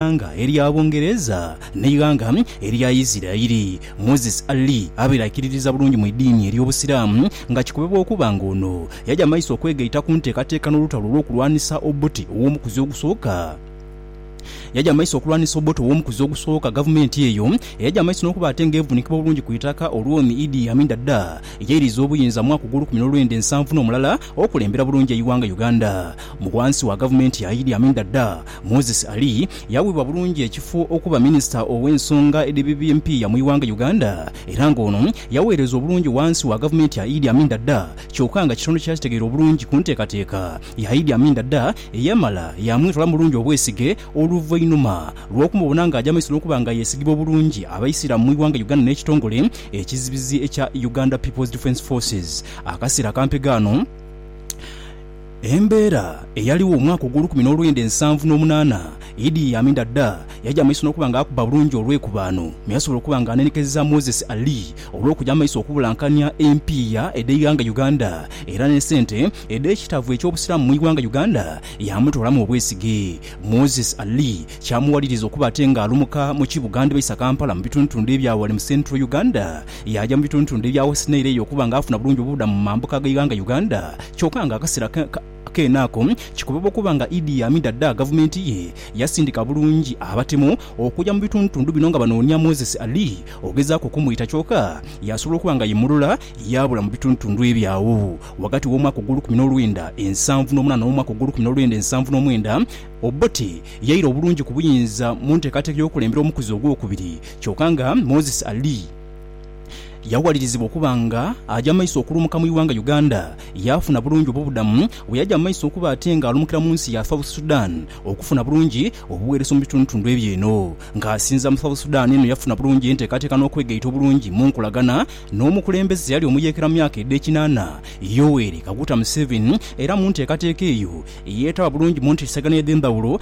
eighanga erya Bungereza n'eighanga erya Isiraeli. Moses Ali abaire aikiririza bulungi mu idiini ery'Obusiraamu nga kikubebwa okuba nga ono yaja maiso okwegaita ku nteekateeka n'olutalo olw'okulwanisa Obote ow'omukuzi ogusooka. Yaja maiso okulwanisa Obote ow'omukuzi ogusooka, gavumenti eyo eyaja maiso n'okuba ate nga evuunikibwa bulungi ku itaka olw'Omi Idi Amin Dada yairiza obuyinza mwaka ogw'olukumi n'olwenda ensanvu n'omulala okulembera bulungi eighanga Uganda. Mu ghansi wa gavumenti ya Idi Amin Dada, Moses Ali yawebwa bulungi ekifo okuba Minisita ow'ensonga edh'ebibi empiiya mu ighanga Uganda era nga ono yaweereza obulungi wansi wa gavumenti ya Idi Amin Dada kyoka nga kitono kyakitegeera obulungi ku nteekateeka ya Idi Amin Dada eyamala yamwetwala mu bulungi obwesige oluvainuma lw'okumubona nga aja maiso n'okuba nga yesigibwa obulungi abaisiramu mu ighanga Uganda n'ekitongole ekizibizi ekya Uganda People's Defence Forces. Akaseera akampegha ano. Embeera eyaligho omwaka ogw'olukumi n'olwenda ensanvu n'omunaana, Idi Amin Dada yaja amaiso n'okuba nga akuba bulungi olw'ekubaano me yasobola okuba nga anenekeza Moses Ali olw'okuja amaiso okubulankania empiiya edh'eighanga Uganda era ne sente edh'ekitavu eky'Obusiraamu mu ighanga Uganda yamutoolamu obwesige. Moses Ali kyamuwaliriza okuba ate nga alumuka mu ki Buganda baisa Kampala mu bitundutundu ebya ghale mu Central Uganda Yaaja mu bitundhutundhu ebya West Nile eyo okuba nga afuna bulungi obubudamu mu mambuka g'eighanga Uganda, kyoka nga akasera keene ako kikubibwa okuba nga Idi Amin Dada gavumenti ye yasindika bulungi abatemu okuja mu bitundhutundhu bino nga banoonia Moses Ali ogezaaku okumwita kyoka yasobola okuba nga yemulula yaabula mu bitundhutundhu ebyo agho ghagati w'omwaka ogw'olukumi n'olwenda ensanvu n'omunaana n'omwaka ogw'olukumi n'olwenda ensanvu n'omwenda. Obote yaira obulungi ku buyinza mu nteekateeka y'okukulembera omukuzi ogw'okubiri Kyoka nga Moses Ali yawalirizibwa okuba nga aja mu maiso okulumuka mu ighanga Uganda, yaafuna bulungi obubudamu bweyaja mu maiso okuba ate nga alumukira mu nsi ya South Sudan okufuna bulungi obuwereso mu bitundutundu ebyo eno nga asinza mu South Sudan eno yafuna bulungi entekateka nokwegaita obulungi munkolagana nomukulembeze eyali omuyekera mu myaka ede kinana Yoweri Kaguta Museveni era muntekateka eyo yetaba bulungi munteesegana edhendhawulo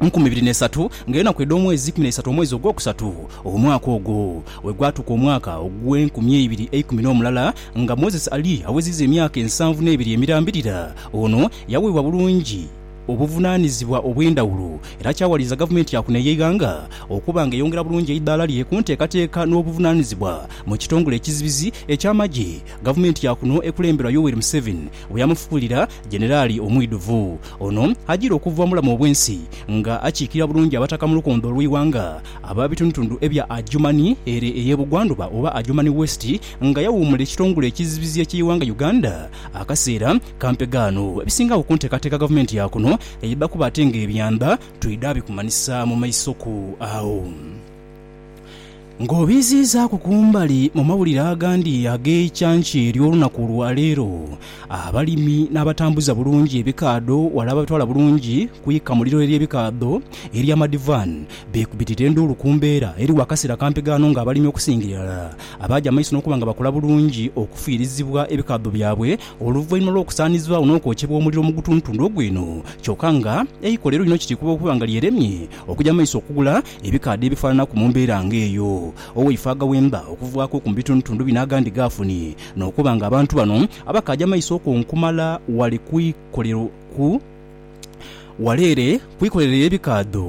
nkumi ibiri n'eisatu, nga enaku edh'omwezi ikumi n'eisatu omwezi ogwokusatu omwaka ogwo. Bwe gwatuuka omwaka ogw'enkumi eibiri eikumi n'omulala, nga Moses ali aweziiza emyaka ensanvu n'ebiri emirambirira, ono yaweebwa bulungi obuvunaanizibwa obw'endhawulo, era kyawaliiza gavumenti ya kuno ey'eighanga okuba nga eyongera bulungi eidaala lye ku nteekateeka n'obuvunaanizibwa mu kitongole ekizibizi eky'amagye. Gavumenti ya kuno ekulemberwa Yoweri Museveni Bwe yamufuulira Jeneraali omwidhuvu, ono ajira okuva mu bulamu obw'ensi nga akiikirira bulungi Abataka mu lukondo olw'eighanga ab'abitundutundu ebya Adjumani ere ey'ebugwandhuba oba Adjumani West nga yawuumula ekitongole ekizibizi eky'eighanga Uganda akaseera ka mpegaano ebisingagho ku nteekateeka gavumenti ya kuno eyebba kuba ate ng'ebyanda twidha bikumanhisa mu maisoku agho. Ng'obiiziizaaku ku mbali, mu mawulire agandi ag'eicanca ery'olunaku lwa leero, abalimi n'abatambuza bulungi ebikaadho wala ababitwala bulungi ku ikamuliro ery'ebikaadho erya Madivan beekubitirira enduulu ku mbeera eriwo akaseera kampi ghano ng'abalimi okusinga irala abaaja amaiso n'okuba nga bakola bulungi okufiirizibwa ebikaadho byabwe oluvainhuma lw'okusaanizibwagho n'okwokyebwa omuliro mu gutundutundu ogw'eno kyoka nga eikole lino kiri kuba okuba nga lyeremye okuja mu maiso okugula Ebikaadha ebifaananaku mu mbeera nga eyo, owaife agaghemba okuvaaku oku mu bitundutundu bino agandi g'afunye, n'okuba nga abantu bano abakaaja amaiso okwo nkumala wale kwikolerwa ku wala ere kwikolerwa ey'ebikaadho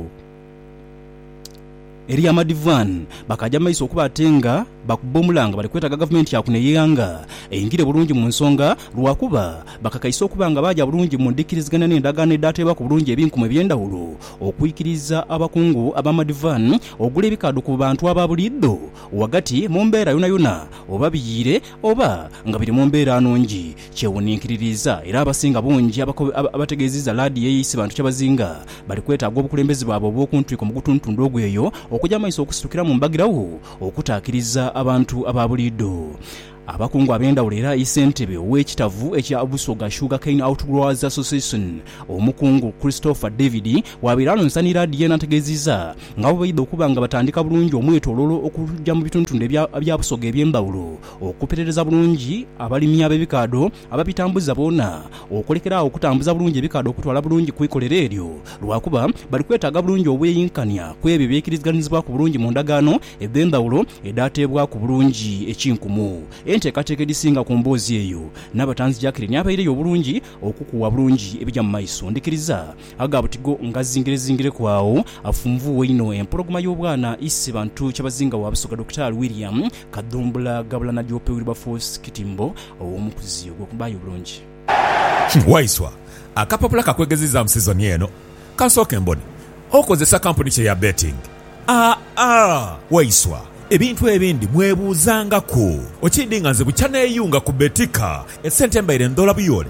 ery'amadivwaani, bakaaja amaiso okuba ate nga. Bakubba omulanga bali kwetaga gavumenti ya kuno ey'eighanga eingire bulungi mu nsonga lwakuba bakakaisa okuba nga baaja bulungi mu ndhikiriziganya n'endagaano edhaateebwaku bulungi ebinkumu eby'endhawulo okwikiriza abakungu ab'amadivani ogula ebikaadho ku bantu aba buliidho ghagati mu mbeera yonayona oba biyiire oba nga biri mu mbeera nungi kyewuninkiririza era abasinga bungi abategeezizza laadiyo eye Isibantu Kyabazinga bali kwetaaga obukulembeze bwabwe obw'okuntwiko mu gutuntundu ogweyo okuja maiso okusitukiramu mbagirawo Okutaakiriza abantu aba buliidho. Abakungu ab'endhawulo era aye ssentebe ow'ekitavu ekya Busoga Sugar Cane Outgrowers Association, Omukungu Christopher David bw'abaire alonsa ni laadiyo eno ategeezizza nga bwe baidha okuba nga batandika bulungi omwetoloolo okuja mu bituntundu ebya Busoga eby'endhawulo okupetereza bulungi abalimi ab'ebikaadho ababitambuza boona okulekera agho okutambuza bulungi ebikaadha okutwala bulungi ku ikolero eryo, lwakuba bali kwetaaga bulungi obweyinkania ku ebyo ebyekiriziganizibwaku bulungi mu ndagaano edh'endhawulo edhaateebwaku bulungi ekinkumu. Enteekateeka edhisinga ku mboozi eyo n'abatanzi Jacqueline abaireyo obulungi okukuwa bulungi ebija mu maiso. Ndhikiriza aga butigo ngazingirezingireku agho afunvuuwe inho empologoma y'obwana Isi Bantu Kyabazinga wa Busoga Dokitaali William Kadhumbula ghabula na Jope Wilberforce Kitimbo ow'omukuzi ogw'okubbaayo obulungi. Kino Waiswa, akapapula ka kwegeziizaamu sizoni eno. Ka nsooke mbone. Okozesa kampuni ki eya betting? Aa, Waiswa, ebintu ebindi mwebuuzangaku. Okiidhi nga nze bukya neeyunga ku Betika, esente mbaire ndoola buyoole.